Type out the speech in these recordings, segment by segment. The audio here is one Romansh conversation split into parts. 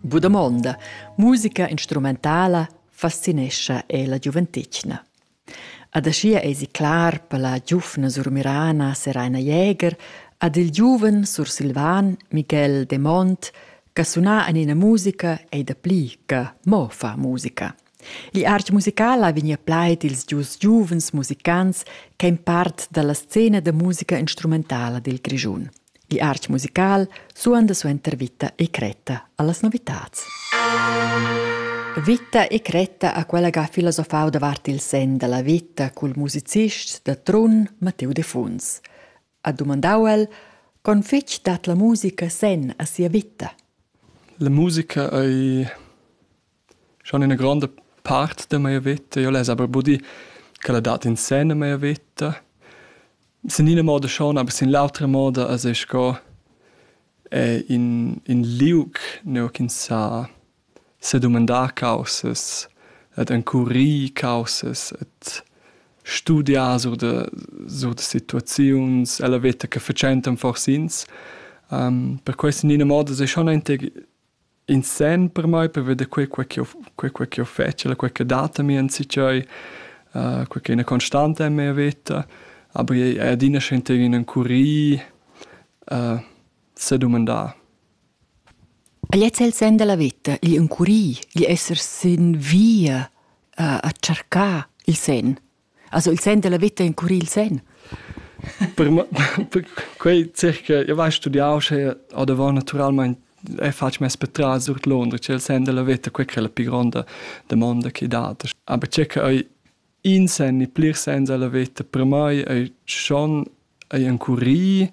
Bu damonda, musica instrumentala fascinescha e la giuventetgna. Ad aschia eisi clar per la giuvna surmirana Seraina Jäger ad il giuven sursilvan Miguel de Mont che suna en ina musica ei da pli che mo fa musica. L'art musical ha vegnì plaid ils dus giuvens musicants ch'èn part da la scena da musica instrumentala dil Grischun. L'art musical suonda suenter Vita e cretta allas novitads. Vita e cretta ha quella che ha filosofau davart il sen dalla vita cul musicist da Trun Matteo Defuns. Ha domandau el, con fitg dat la musica sen a sia vita? La musica ei Schon üna gronda part da meia veta, io less aber buddir ch'ella dat insenne meia veta. Sin ina moda schon, aber sin l'autra moda as es sco in in liug nua ch'ins sa sedumandar caussas ed encurir caussas ed studiar sur da sur da situaziuns ella veta che fatschentan fors ins. per quai sin ina moda es ei schon aunc In sen per mai per veder quei quei ch'jeu quei quei ch'jeu fetsch e quei che dat a mi enzatgei uh, quei ch'ei ina constanta en mia veta. Aber ei è adina schentei in encurir uh, sedumandar. Gliez è il sen della vita, gli encurir, gli esser sin via uh, a cercar il sen. Also il sen della vita incurri il sen. per, per quei circa io vai studiau sche ad davant naturalmente e faccio mes patras sur Londra, c'è il sen della vita, quella è la più grande domanda che date. Aber circa hai in sen e plir sen della vita, per me è schon è incurri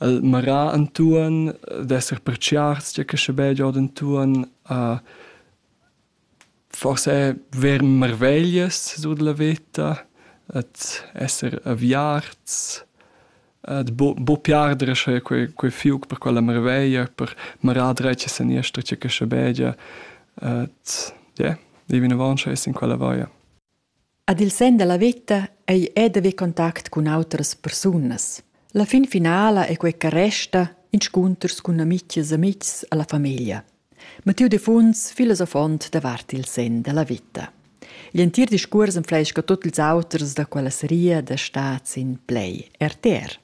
il marà intuon, d'esser perciars, c'è che sche be giod intuon, uh, Forsa ver marveglias sut la veta, ad esser aviarts, ad bu- buca piarder sche quei quei fiug per quella marveglia, per marar dretg e seniester tgei che schabegia, ad ie, ir vinavon sche ess in quella vaia. Ad il senn da la veta ei ei d'haver contact cun autras persunas. La fin finala ei quei che resta inscunters cun amitgs amitgs alla famiglia. Mattiu Defuns, filosofont davart il senn della vita. Gl'entir discuors enfleisca tot ils auters da quella seria da stat sin play RTR.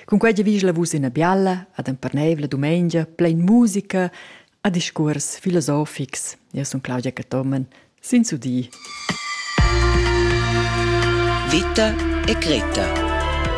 Cun quei giavischla vus ina bialla ad emperneivla dumengia plein musica a discuors filosofics. Eu sun Claudia Cathomen, sin su di. Vita e Greta